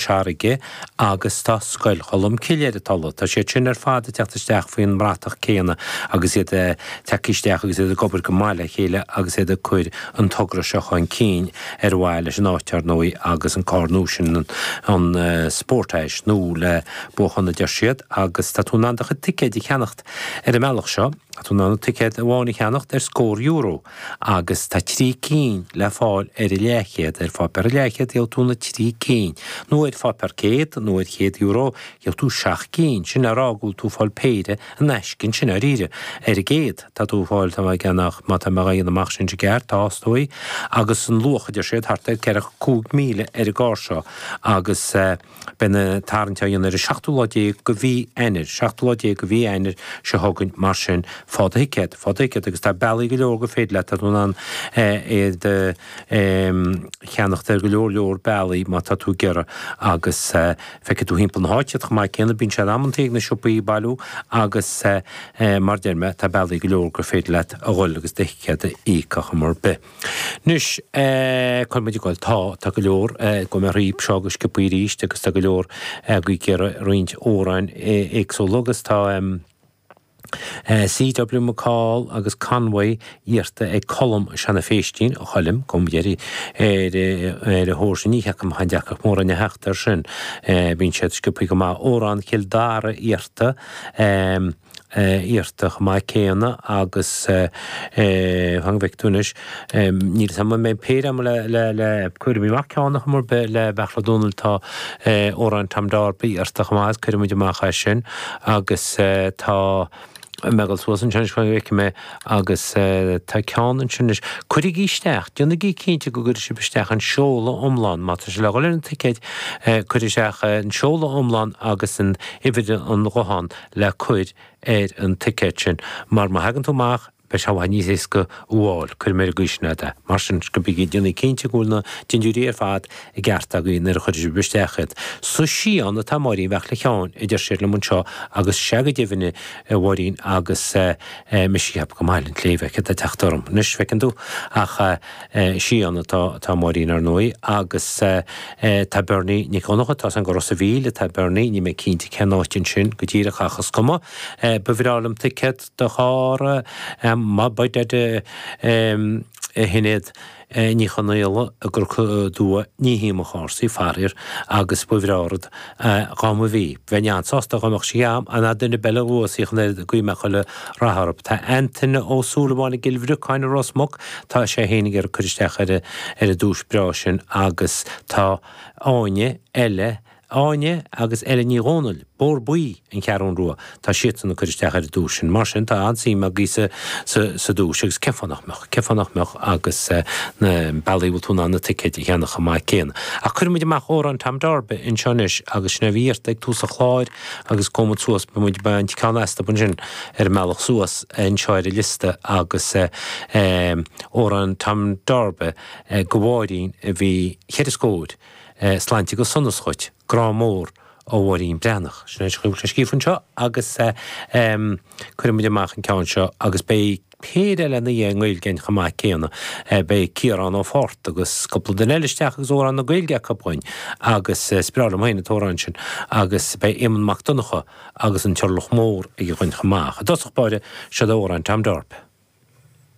Charraige agus tá Scoil Cholm Cille ar an Tulaigh. Tá siad sin ar fad ag teacht isteach faoin mbratach céanna agus iad ag teacht isteach agus iad ag obair go maith le chéile agus iad ag cur an togra seo chun cinn ar mhaithe leis an áit, ar ndóigh, agus an carr nua sin, an Sportage, nó le buachan, a deir siad, agus tá tú in ann do chuid ticéid a cheannacht ar an mbealach seo. Tá tú in ann ticéad amháin a cheannacht ar scór euro. agus tá trí cinn le fáil ar leathchéad ar pháipéar leathchéad, gheobhaidh tú na trí cinn, nó ar pháipéar céad, nó ar chéad euro, gheobhaidh tú seacht gcinn, sin le rá go bhfuil tú ag fáil péire in aisce ansin, dáiríre, ar an gcéad, tá tú ag fáil, tá má cheannaíonn, má tá mé á dhéanamh amach sin i gceart, tástóidh, agus an luach a deir siad, thart ar ceithre, cúig míle ar an gcarr seo, agus. Beidh an tarraingt á dhéanamh ar an seachtú lá déag de mhí Eanáir, seachtú lá déag de mhí Eanáir seo chugainn mar sin faigh do thicéad, faigh do thicéad agus tá bealaí go leor gur féidir leat, tá tú in ann iad a cheannacht ar go leor leor bealaí má tá tú ag iarraidh agus feicfidh tú thimpeall na háite iad chomh maith céanna, bíonn siad amantaí ag na siopaí bailiú agus mar a deir mé tá bealaí go leor gur féidir leat a dhul agus do thicéad a phiocadh cibé ar bith. Anois, cáil muid ag gol. Tá, tá go leor, gabhfaidh mé thrí seo go sciopaí arís agus tá go leor agaibh ag iarraidh roinnt amhráin éagsúla agus tá CW McCall agus Convoy iarrta ag Colm Sheáin Feistín, a Choilm, gabhfaidh mé ar a thóir sin, ní cheapaim aon deacracht mórán a theacht air sin, bíonn siad sciopaí go maith. Amhrán Chill Dara iarrta. iarrta chomh maith céanna agus fan go bhfeice tú anois. Níl fhios a'm an mbeidh péire a'm ach cuirfidh mé amach ceann acu ar bith le Beartla Ó Domhnaill tá Amhrán Tom Darby iarrta chomh maith agus cuirfidh muid amach é sin agus tá mé ag dul suas ansin anois fan go bhfeicfidh mé agus tá ceann ansin anois. Cuirigí isteach, déanaigí cinnte go gcuirfidh sibh isteach an seoladh iomlán má tá sibh le dhul ar an ticéad cuirigí isteach an seoladh iomlán agus an uimhir an ghutháin. le cur ar an ticéad sin, mar má thagann tú amach, beidh sé i bhfad níos éasca thú a fháil, cuirfidh mé ar an gcaoi sin é, de. Mar sin, déanaigí cinnte go bhfuil na dindiúirí ar fad i gceart againn nuair a chuirfeas sibh isteach iad. Sa Sídheán atá Máirín Bheag le ceart, a deir siad liom anseo, agus is ea go deimhin, a Mháirín, agus mise ag ceapadh go mba Baile an tSléibhe a chur atá ag teacht orm anois, feiceann tú, ach. Sídheán atá Máirín, ar ndóigh, agus tá Berni Nic Dhonncha, tá seans go Ros a' Mhíl atá Berni, níl mé cinnte cén áit ansin go díreach ach is cuma. Ba bhreá liom ticéad do charr más é do thoil é Sinéad Ní Chonaola i gCorca Dubha, ní hionann cúrsaí, faraor, agus ba bhreá rud. a dh'am a bhí. Bheinn an-sásta dhá mbeadh sí a'am, ná duine ar bith eile a bhuafas í ach an oiread guífidh mé chuile rath orthu. Tá Antaine Ó Súilleabháin i gCill Bhriocáin i Ros Muc, tá sé fhéin ag cur isteach ar an duais breá sin agus tá Áine, Eile, Áine agus Eile Ní Dhomhnaill, Bóthar Buí, an Cheathrú Rua. Tá siadsan ag cur isteach ar an duais sin. Mar sin, tá an-suim agaí sa duais, agus cén fáth nach mbeadh? Cén fáth nach mbeadh agus na bealaí a bhfuil tú in ann na ticéid a cheannach chomh maith céanna. Ach cuirfidh muid amach Amhrán Tom Darby anseo anois agus sin é a bhí iarrtha ag tús an chláir agus gabhfaidh muid suas, beidh muid ag baint ceann astu ansin ar an mbealach suas anseo ar an liosta agus Amhrán Tom Darby, do Mháirín a bhí cheithre scóir. Sláinte agus sonas dhuit. Grá mór ó Mháirín Breathnach. Sin é a bhfuil scríofa anseo agus cuirfidh muid amach an ceann seo agus beidh péire eile ina dhiaidh i nGaeilge an chomh maith céanna. Beidh Ciarán Ó Fátharta agus cúpla duine eile isteach agus amhrán na Gaeilge acu againn agus is breá liom féin an t-amhrán sin agus beidh Éamonn Mac Donncha agus an Turlach Mór aige dhúinn chomh maith. I dtosach báire, seod Amhrán Tom Darby.